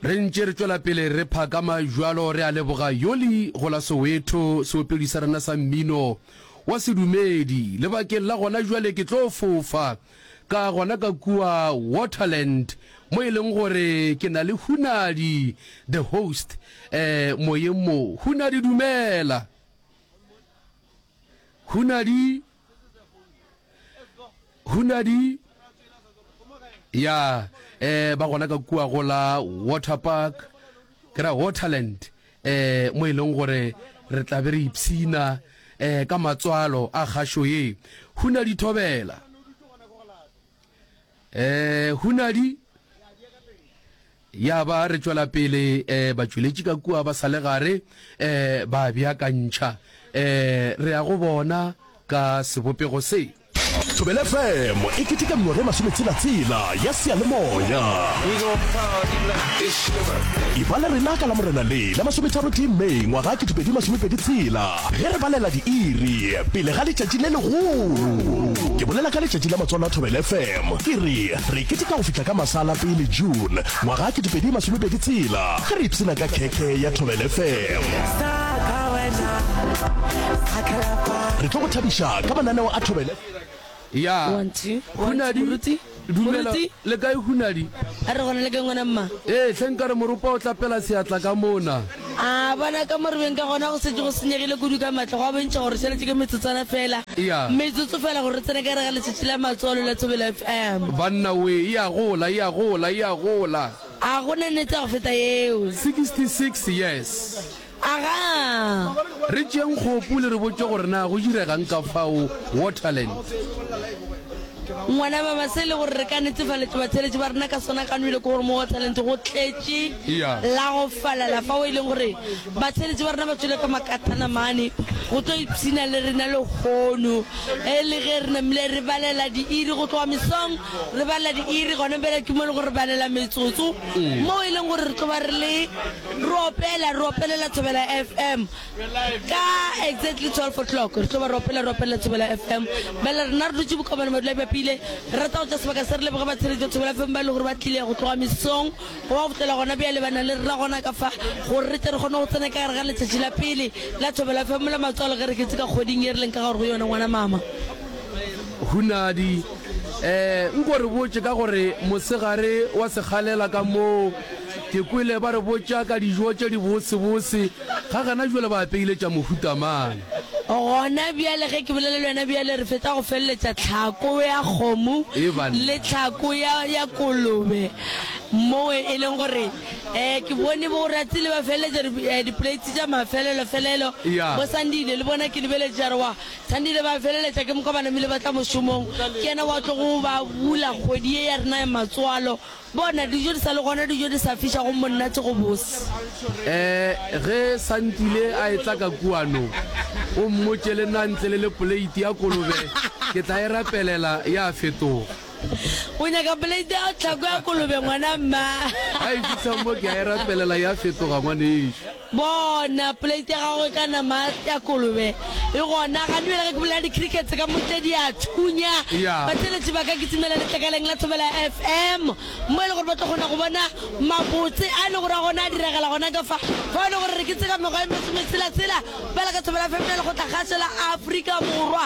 re ntše re tšwela pele re phakama jalo re a leboga yoli go la soweto seopedi sa rena sa mmino wa sedumedi lebakeng la gona jwale ke tlo fofa ka gona ka kua waterland mo e leng gore ke na le hunadi the host eh moyeng mo hunadi dumela hunadi hunadi ya eh ba gona ka kua go la water park ke ra waterland eh mo e leng gore re tla be re ipshina eh ka matswalo a kgašo ye hunadi thobela eh hunadi Ya ba re tšwela pele, um batšweletši ka kua ba sa le gare, um ba a beakantšha. Um re ya go bona ka sebopego se. Thobela FM e keteka mengwaga e masometshela-tshela ya seyalemoya. Eba le rena ka Lamorena le la masometharotee Mei ngwaga ketupedi masomepedi tshela ge re balela diiri pele ga letšatši le legolo. Ke bolela ka letšatši la matswalo a Thobela FM ke re Re keteka go fihla ka masala pele June ngwaga ke 2020 tshela ge re ipshina ka khekhe ya Thobel FM. Re tlo go thabiša ka mananeo a Thobel FM. Ya. One, two. Hunadi. Moruti. Dumela. Moruti. Le kae Hunadi? A re gona le kae ngwana mma? Ee, hle nkare moropa o tlapela seatla ka mona. A bona ka mo re beng ka gona go šetše go senyegile kudu ka mahlo, go a bontšha gore re šaletše ke metsotswana feela, Eya. metsotso feela gore re tsene ka gare ga letšatši la matswalo la Thobela FM. Banna we, e a gola, e a gola, e a gola. A go na nnete ya go feta yeo? 66 years. Agaa! Re tšeeng kgopu le re botše gore na go direga'ng ka fao Waterland. Ngwana baba, se e le gore re ka netefaletša batheeletši ba rena ka sona ganoile ke gore mo Waterland go tletše. la go falala fao e leng gore batsheletsi ba rena ba tswile ka makathana mane go tlo ipshina le rena lehono e le ge re namile re balela diiri go tloga mesong re balela diiri gona bela ke mo e le gore re balela metsotso mm. moo e leng gore re tlo ba re le re opela re opelela thobela fm ka exactly 12 o'clock re tlo ba re opela re opelela thobela fm bela rena re dutse bokomane madula bjapile re rata go tla sebaka se re leboge batsheletsi ba thobela fm ba e le gore ba tlile go tloga mesong Go ba go tlola gona bjale ba na le rra gona ka fa, gore re tle re kgone go tsena ka gare ga letšatši la pele la thobela. A femola matswalo ge re ketse ka kgoding ye re leng ka gare go yona, ngwana mama. Hunadi, ee, nko re botše, ka gore mosegare wa se galela ka moo, ke kwele ba re botša ka dijo tše dibosebose. Ga gana bjale ba apeile tša mohuta mang? Gona bjale ge ke bolela le wena bjale, re fetsa go feleletša tlhako ya kgomo Ee, banna. le tlhako ya, ya kolobe mowe, e leng gore um ke bone boratile ba feleletša di, eh, diplates tša mafelelo felelo. Ya. Bo Sandile le bona ke lebeletše tša re wa Sandile ba feleletša ke moka ba namile ba tla mošomong, ke yena wa tlogo ba bula kgwedi ye ya rena ya matswalo. Bona, dijo di sa le gona, dijo di sa fiša go monnatse go bose. Ee, ge Santile a etla ka kuano, o mmotše le na ntle le le poleiti ya kolobe, ke tla e rapelela ya fetoga. O nyaka poleiti ya tlhako ya kolobe, ngwana mma? Ga e fihla mo, ke a e rapelela ya fetoga, ngwanešu. Bona, poleiti ya gago e ka nama ya kolobe. E gona, ga nwele ge ke bolela di-crickets ka mo tle di a thunya. Batheeletši ba ka kitimela letlakaleng la Thobela FM, mo e le gore ba tlo kgona go bona mabotse a e le gore a gona a diragala gona ka fa. Fa e le gore re ke tseka mekgwa e mesome-tshelatshela, bala ka Thobela FM ya Lekgotla-kgašo la Afrika Borwa.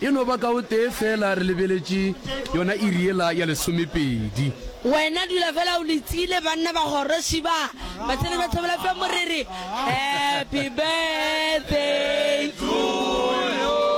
E no ba ka o tee feela re lebeletše yona iri yela ya lesomepedi. Wena dula fela o letsile banna ba goroši ba ba tsene ba thabela fa mo re re happy birthday to you.